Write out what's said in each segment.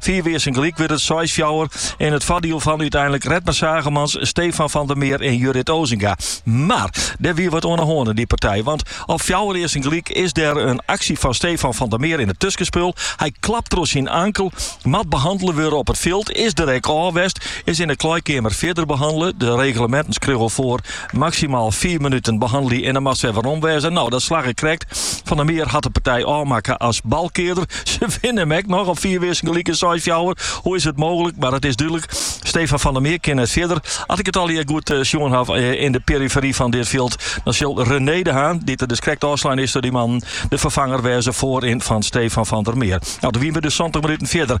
Fiif earsten gelyk wurdt it seis fjouwer yn it foardiel fan úteinlik Redmer Zaagemans, Stefan van der Meer en Jurrit Osinga. Mar der wie wat oan 'e hân yn dy partij, want op fjouwer earsten gelyk is der in aksje fan Stefan van der Meer yn it tuskenspul. Hy klapt troch syn ankel, moat behannele wurde op it fjild, is der ek ôf west, is yn 'e kleikeamer fierder behannele, de regleminten skriuwe foar Maksimaal fiif minuten behannelje en dan moatst wer werom wêze. Nou, dat slagge krekt. Van der Meer hat de partij ôfmakke as balkearder. Se winne him ek noch op fiif earsten gelyk en seis fjouwer. Hoe is it mooglik? Mar dat is dúdlik. Stefan van der Meer kin net fierder. At ik it allegear goed eh, sjoen haw eh, yn de perifery fan dit fjild, dan sil René de Haan, dy't der dus krekt ôfslein is troch dy mannen, de ferfanger wêze foaryn fan Stefan van der Meer. Nou, dan wien we dus 70 minuten fierder.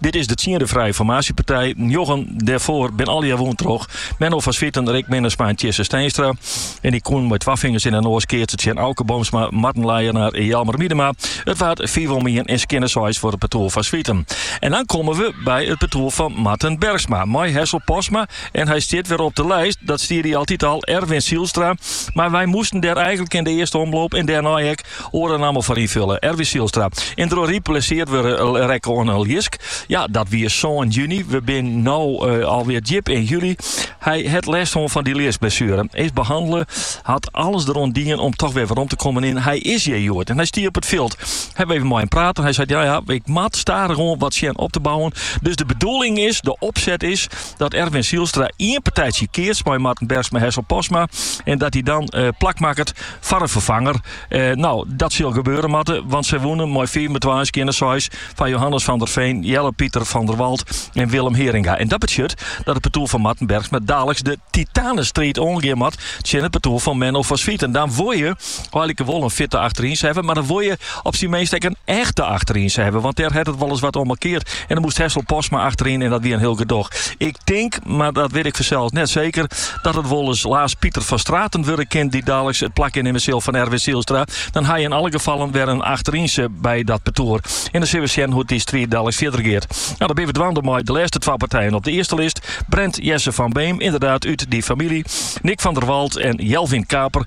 Dit is de tsiende frije formaasjepartij. Njoggen dêrfoar bin allegear wûn troch Menno van Zwieten, Rick Minnesma en Tjisse Steenstra. En die koenen mei twa fingers yn 'e noas keatse tsjin Auke Boomsma, Marten Leijenaar en Jelmer Miedema. It waard fiif om ien en skjinne seis foar it partoer Van Zwieten. En dan komme we by it partoer fan Marten Bergsma mei Hessel Postma. En hy stiet wer op de lijst, dat stie er altyd al, Erwin Zijlstra. Mar wy moasten dêr eigenlik yn de earste omloop en dêrnei ek Oare namme foar ynfolje, Erwin Zijlstra. Yn Dronryp blessearre rekke oan in ljisk. Ja, dat wie sân juny. We bin no alwear djip yn july. Hy hat lêst hân fan dy ljiskblessuere. Is behannele. Hat alles deroan dien om toch wer werom te kommen en hy is hjir hjoed en hy stie op it fjild. Hawwe we even mei him praat en hy seit, ja-ja, ik moat stadichoan wat sjen op te bouwen. Dus de bedoeling is, de opset is, dat Erwin Zijlstra ien partytsje keatst mei Marten Bergsma, Hessel Postma en dat hy dan plak makket foar in ferfanger. No, dat sil gebeure moatte, want sy wûnen mei fiif om twa en skjinne seis fan Johannes van der Veen, Jelle Pieter van der Walt en Willem Heeringa. En dat betsjut dat it partoer fan Marten Bergsma daliks de titanenstriid oangean moat tsjin it partoer fan Menno van Zwieten. Dan wol je eilike wol in fitte achterynse hawwe, mar dan wol je Op syn minst ek in echte achterynse hawwe, want dêr hat it wolris wat oan mankearre. En dan moest Hessel Postma achteryn en dat wie in hiel gedoch. Ik tink, mar dat wit ik fansels net seker, dat it wolris Laas Pieter van Straten wurde kin dy't daliks it plak innimme sil fan Erwin Zijlstra. Dan ha je yn alle gefallen wer in achterynse by dat partoer. En dan sille we sjen hoe't dy striid daliks fierder geat. Nou, dan binne we dwaande mei de lêste twa partijen op de earste list. Brent Jesse van Beem, ynderdaad út dy famylje. Nick van der Walt en Jelvin Kaper.